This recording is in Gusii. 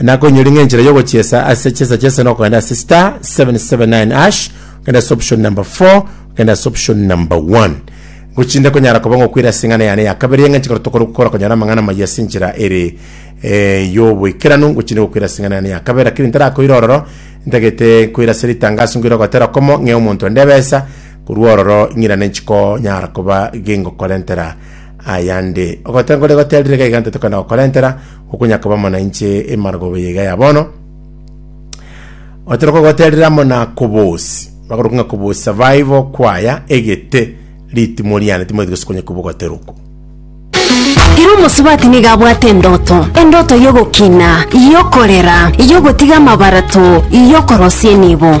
na konyori ng'a enchera yogochiesa ase chesa chesa no kogenda ase star 779 ash kenda ase option number 4 kenda ase option number 1 gochinde konyara koba ngokwira ase eng'ana yane ya kabere eng'enche kero tokore gukora konyara amang'ana maya ase enchera ere eh, yoboikeranu gochinde gokwira ase eng'ana yane ya kabere lakini ntarakoira ororo ntagete koira ase ritangaso ngoira gotera komo ng'e omonto ende ebesa korwa ororo ing'irane nchiko nyara koba gengokorentera ayande ogotengore goterire gaiga ntetokana gokorentera okonya koba amo nainche emaragoba eye iga ya bono, otera kogoterera amo na kobosi, bakoruka ng'a kobosi survival kwaya egete ritimo riane timoeti gose konya kobogotera oko. Ere omosubati nigo abwate endoto, endoto y'ogokina, y'okorera, y'ogotiga amabarato, y'okorosia enibo.